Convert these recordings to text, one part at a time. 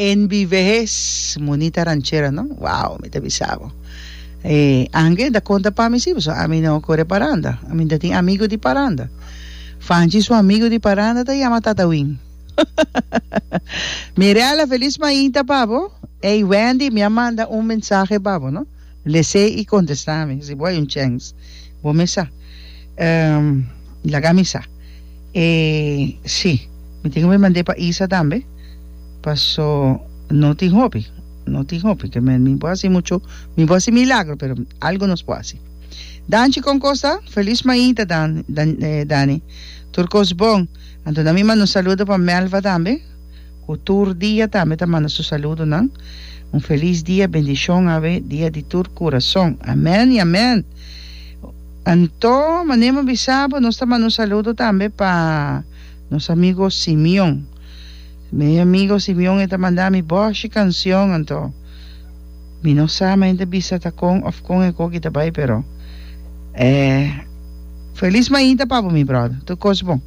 NBVS, Munita ranchera no? Wow, mi ta bisa bo. E angel ta conta pa mi si, paso a mi no core paranda. A mi ta tin amigo di paranda. Fanchi su amigo di paranda ta yama Tata Win. Mirella, feliz mainta pa bo. Ey Wendy, mi a manda un mensahe pa bo no. Lese i kontestá mi, si bo hay un chèns, bo mi sa. Laga mi sa. E si, mi tin wi mand'é pa Isa tambe, paso no tin hopi, no tin hopi ke men mi bo hasi muchu, mi bo hasi milagro, pero algu nos por hasi. Danchi kon kos ta? Felis mainta Dani, tur kos bon. Anto nan mi manda un saludo pa Melva tambe. cu tur dia tambe ta manda su saludonan. Un feliz dia, bendicion awe dia di tur curazon. Amen y amen! Anto, mane bo bisa bo, nos ta manda un saludo tambe pa nos amigo Simeon. Mi amigo Simeon e ta manda mi boshi cancion, anto mi no sa mente bisa ta con of con e coki ta bay, pero eh, feliz mainta pa bo mi brother, tur cos bon.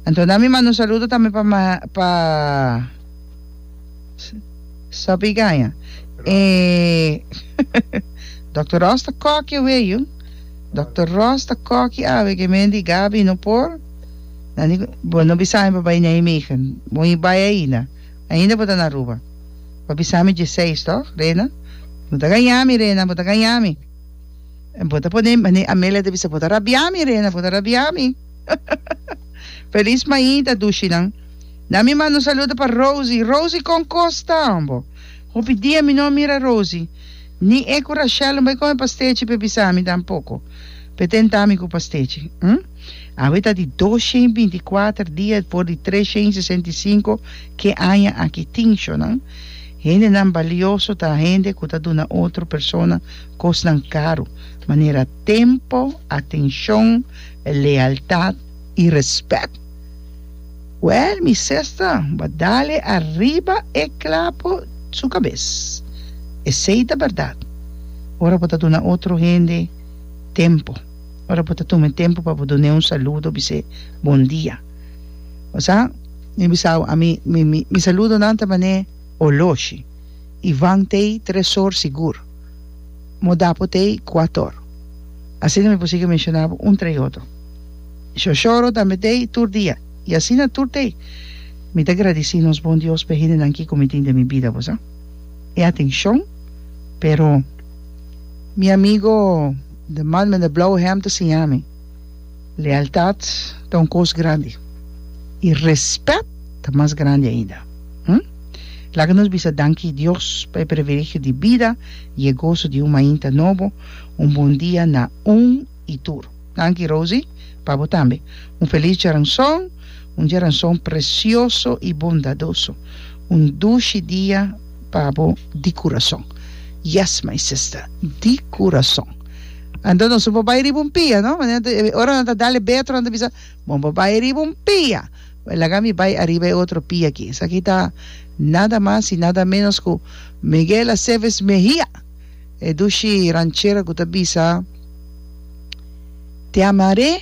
Anto nan mi manda un saludo tambe pa pa Soppy Gaña e Doctor Ross ta koki awe yu Doctor Ross ta koki awe ke men di Gaby no por nan di bo no bisa mi pa bai Nijmegen bo mi bai ainda ainda bo ta na Aruba bo a bisa mi die seis toch Rena bo ta gaña mi Rena bo ta gaña mi en bo ta pone Amelia ta bisa bo ta rabia mi Rena bo ta rabia mi. Feliz maida dushinan. Na mi manda un saludo pa Rosie. Rosie con cos ta ambo? Hopi dia mi no a mira Rosie. Ni e cu Rachel no bay come pastechi pe bisa mi tampoco. Pe tenta mi cu pastechi. Hm? Awe ta di dos shen binti cuater dia for di tres shen sesenta y cinco ke aña aki tin shonan. Hendenan balioso ta hende cu ta duna otro persona cosnan caro. Manera tempo, atencion, lealtat i respet. Wèl, mi sesta, bo dale ariba e klapo su kabes. Esei ta bèrdat. Ora bo ta duna otro hende tempu, ora bo ta tuma e tempu pa bo dun'é un saludo, bis'é bon dia. Bo sa, mi bisa bo, ami, mi, mi, mi saludonan ta man'é oloshi i vant'ei tres or sigur. Modapo te i Kuator. Asina mi por sigui menciona bo un tra i otro. Shoshoro tambe te i tur dia. I asina tur te. Mi ta gradici nos bon Dios p'e hendenan kico mi tin den mi bida, bo sa. E atencion, pero mi amigo de man mende Blauwhem ta siña mi. Lealtad ta un kos grandi i rèspèt ta mas grandi ainda. Hm. Laga nos bisa danki Dios pa e privilegio di bida i e goso di un mainta nobo, un bon dia na un i tur. Danki Rosy, pa bo tambe. Un felis djaranson, un djaranson presioso i bondadoso. Un dushi dia pa bo di kurason. Yes my sister, di kurason. Anto nos por bai riba un pia, no? Ora nan ta dal e betro, nan ta bisa, bon por bai riba un pia. Bai, laga mi bai ariba e otro pia aki. Esaki ta nada mas i nada menos ku Miguel Aceves Mejia, e dushi ranchero ku ta bisa, Te amaré.